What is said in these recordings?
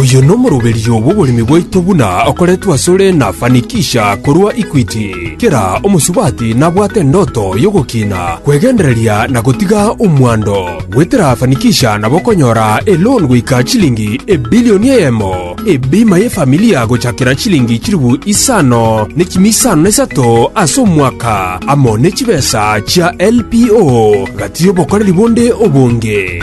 Oyo nomoroberio bw'oboremi bwaito buna okoretwe asore na Fanikisha korwa Equity. Kera omosubati nabwate endoto y'ogokiina, kwegendereria na gotiga omwando. Goetera Fanikisha nabo okonyora eloan goika chilingi ebilioni eyemo, ebima y'efamilia gochakera chilingi chilifu isano ne chimi isano na isato ase omwaka, amo ne chibesa chia LPO gati y'obokoreri bonde obonge.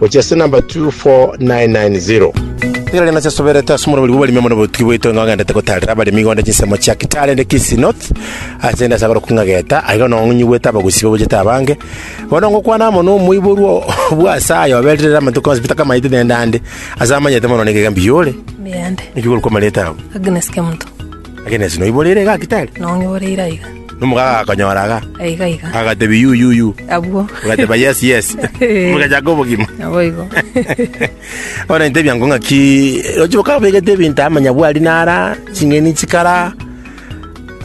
Gochia ase namba 24990. Nigo rende nasesoberete ase omorobori bw'abaremi amo nobotugi bwaito ng'a ng'endete gotaarera abaremi igonde chinsemo chia Kitale ande Kisii North ase endasaba oroku ng'a Geta, aiga nong'unyigwete abagusii babuchete abange. Bono ngokwana amo nomoiborwa o- bw'Ase aye oberire ere amatuko onsi peter kamaete nende ande, ase amanyete mono nigo iga mbiyore. Mbiande. Niki korokwa amareta abo? Agnes Kemuto. Agnes, noiboreire iga gaki tari? Nong'iboreire aiga. Nomogaga agakonyora iga? Aiga aiga. Agatebia, Yu, yu, yu. Abwo. Ogateba, Yes, yes. Eh. Bogachaka obogima. Naboigo. Bono intebia ngo ng'aki roche bokabegete ebinto amanyabwari nara ching'eni chikara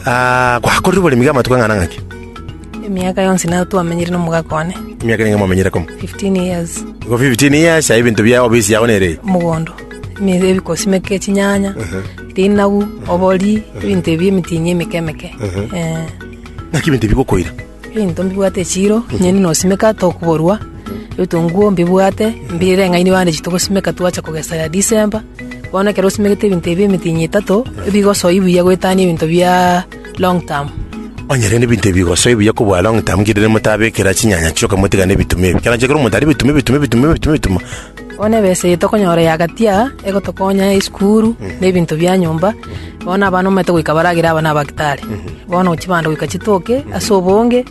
ah, gwakorire oboremi bwa amatuko ang'ana ng'aki Emiaka yonsi nao twamenyire n'omogaka one. emiaka nenge mwamenyire komo 15 years. igo 15 years aye ebinto bia obisi yao nere Mogondo. emi- ebikosimi eke chinyanya, rinagu, obori, ebinto ebi emitinyi emike emike. Eh, Naki ebinto ebi gokoira. ebinto mbibwate echiro, enyeni nosimeka tokuborwa, ebitunguo mbibwate, mbirire ng'aini bande echio togosimeka twacha kogesa ya December, bono ekero osimegete ebinto ebi emitinyi etato, ebigosoa buya goetania ebinto bia long term. Onye rende ebinto ebi bigosoe buya kobua long term, ki rende motabekera chinyanya chioka motigane ebitume ebi. Kiagera onye kero omonto aria ebitume, ebitume, ebitume, ebitume, ebitume, Bono ebesa eye tokonyora ya agati aa, egotokonya ya esukuru, na ebinto bia nyomba, bono abana omanyete goika baragere aba nabagitari. Bono chibando goika chitoke ase obonge,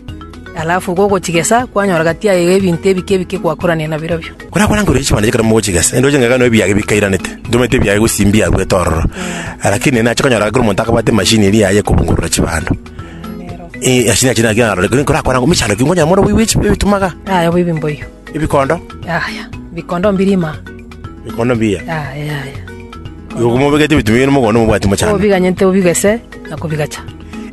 alafu igo ogochigesa, kwanyora gati yaye iga ebinto ebike ebike gwakorania nabirobio. Korakwana nkorwa chibando ekero mogochigesa, inde oche ng'ake nonye ebiage bikairanete, ntomanyete ebiage gose mbiaruete ororo. Lakini nache okonyora ekero omonto akabwate emashini eria yaye ekobungurura chibando, eh, ase naki naki narorete, korakwana ng'a mechando ki, nkonye more oboibi bwe chi- bw'ebitumaga. Aye oboibi mboigo. Ebikondo? Yaya, ebikondo mbiri ime aa. Ebikondo mbiya? Yaya, yaya. Igo komobegete ebitumia bire mogondo mobwati mochando. Kobiganyete obigese na kobigacha.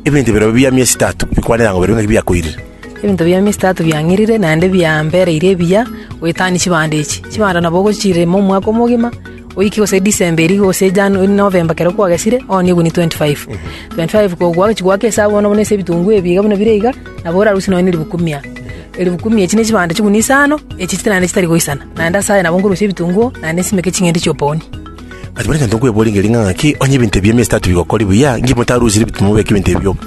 Ebinto bire bia miesi etato bikwanera ng'a bire ng'aki biakoirire. Ebinto bia miesi etato biang'irire naende biambereire ebiya goetania chibando echi. Chibando nabo ogochiirema omwaka omogima. Oike gose December eria gose January November ekero kwagesire ooni egunia twenty five. Twenty five kogwagochi goaka esabu bono buna ase ebitunguo ebi iga buna bire iga nabo orarusie nonye na eribuku mia. Eribuku mia echi ne chibando chigunia isano echi chire naende chitari goisana. Naende ase aya nabo nkorusia ebitunguo naende nsimeke ching'ende chia opaonia. Kare buna egento nkweboria ngeri ng'a ng'aki onye ebinto ebi emiesi etato bigokoria buya, inki motarusire ebituma mobeke ebinto ebi bioka?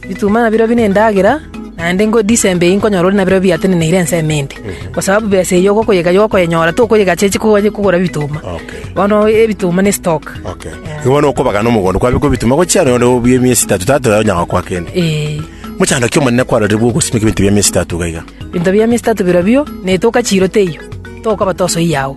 Bituma nabirobio nendagera, naende ngode is'embe eyio nkonyora ore nabirobio biateneneire ense emente, kwa sababu besa eyio ogokoyega igo okoyenyora, tokoyegacha echi konya kogora bituma. Okay. Bono ebituma ne stock. Okay. Igo bono okobagana omogondo kwabekwa ebituma gochia nonye obe emiesi etato tato yaye onyaga gokoa kende. Ee. Mochando ki Omonene kwarorire bwa ogosimeka ebinto bia emiesi etato iga iga? Ebinto bia emiesi etato birobio, netoka chiiro teiyo, tokaba tosoiyao.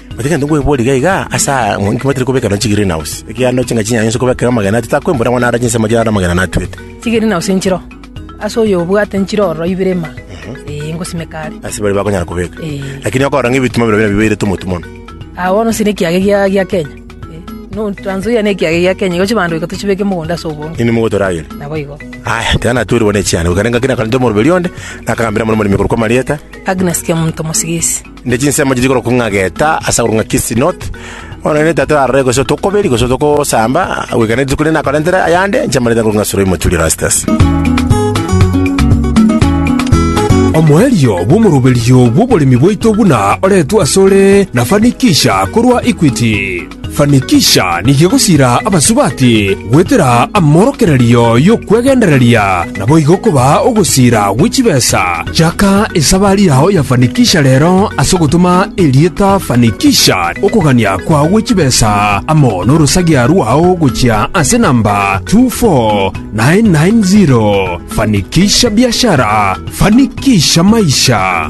Gose egento nkweboria iga iga, ase aya inki mwateire kobeka nonya chigreen house? Ekiagera chingaki chinyanya inse kobekera amagena ati takwembora ng'a narache inse amachera ande amagena natwete. Chigreen house nchiro ase oyobwate nchiro ororo ibere ime, ee, ngosimeka are. Ase bare bakonyara kobeka. Eh. Lakini okorora ng'a ebitima bire buna bibeirete omotu mono. Ah, bono ase nekiage gia gia Kenya. Eh, no Trans Nzoia nekiage gia Kenya, igo chibandoika tochibeke mogondo ase obonge. Nini mogotoragere? Nabo igo. Aya, tiga natweri bone chiane. Goikarenga kina karente omoroberi onde, nakagambera muna omoremi korokwa Marieta. Agnes Kemonto Mosigisi. ne chinsemo chiri korokwa ng'a Geta, ase agorokwa ng'a Kisinoti, bono nere netato arore gose otokoberi gose otokosamba, goika ne rituko rinde nakorentere ayande inche amarita ngorokwa ng'a Suroimu Tulio Rastus. Omoerio bw'omoroberio bw'oboremi bwaito buna oretwe asore na Fanikisha korwa Equity. Fanikisha nigo egosiira abasubati goetera amorokererio y'okwegendereria, naboigo kobaa ogosiira gwe chibesa. Chaka esabari yao ya Fanikisha rero ase ogotoma erieta Fanikisha okogania kwao gwe chibesa amo n'orosagia rwao gochia ase namba 24990. Fanikisha biashara, fanikisha maisha.